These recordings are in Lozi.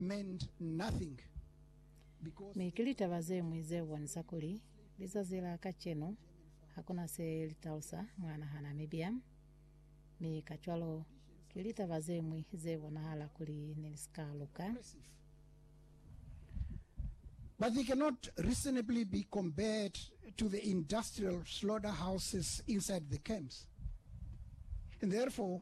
meant nothing because Mi ki litaba ze ñwi ze bonisa kuli lizazi la kacenu ha ku na se li talusa mwa naha Namibia, mi kacwalo ki litaba ze ñwi ze bonahala kuli ne li si ka luka. oppressive, but they cannot reasonably be compared to the industrial slaughterhouses inside the camps, and therefore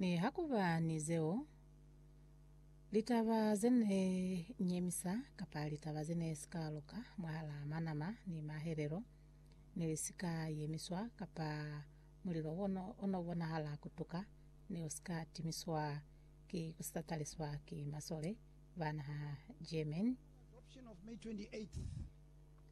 Nihakuba ni zeo, litaba ze ne nyemisa kapa litaba ze ne si ka luka mwahalaa manama ni mahelelo ne li si ka yemiswa kapa mulilo o n'o bonahala ku tuka ne u si ka timiswa ki ku si tataliswa ki masole ba naha Germany,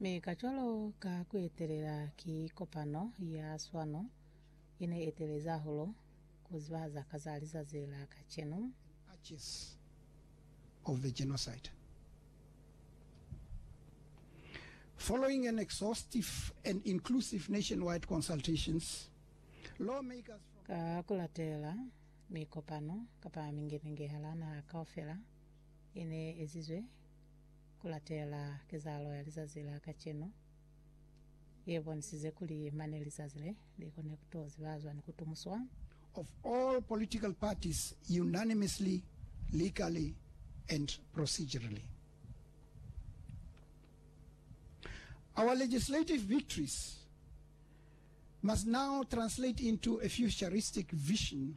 Mi kacwalo ka kuetelela ki kopano ya swano ine etelezi hahulu kuzibahaza ka za lizazi la kacenu. Archives of the Genocide. Following an exhaustive and inclusive nationwide consultations, lawmakers from. Ka kulatela mikopano kapa mingenenge hala naha kaufela ine ezizwe Ku latela kezahalo ya lizazi la kacenu ye bonisize kuli mane lizazi le, li kone ku to zibazwa ni ku tumuswa. of all political parties unanimously, legally and procedurally. Our legislative victories must now translate into a futuristic vision,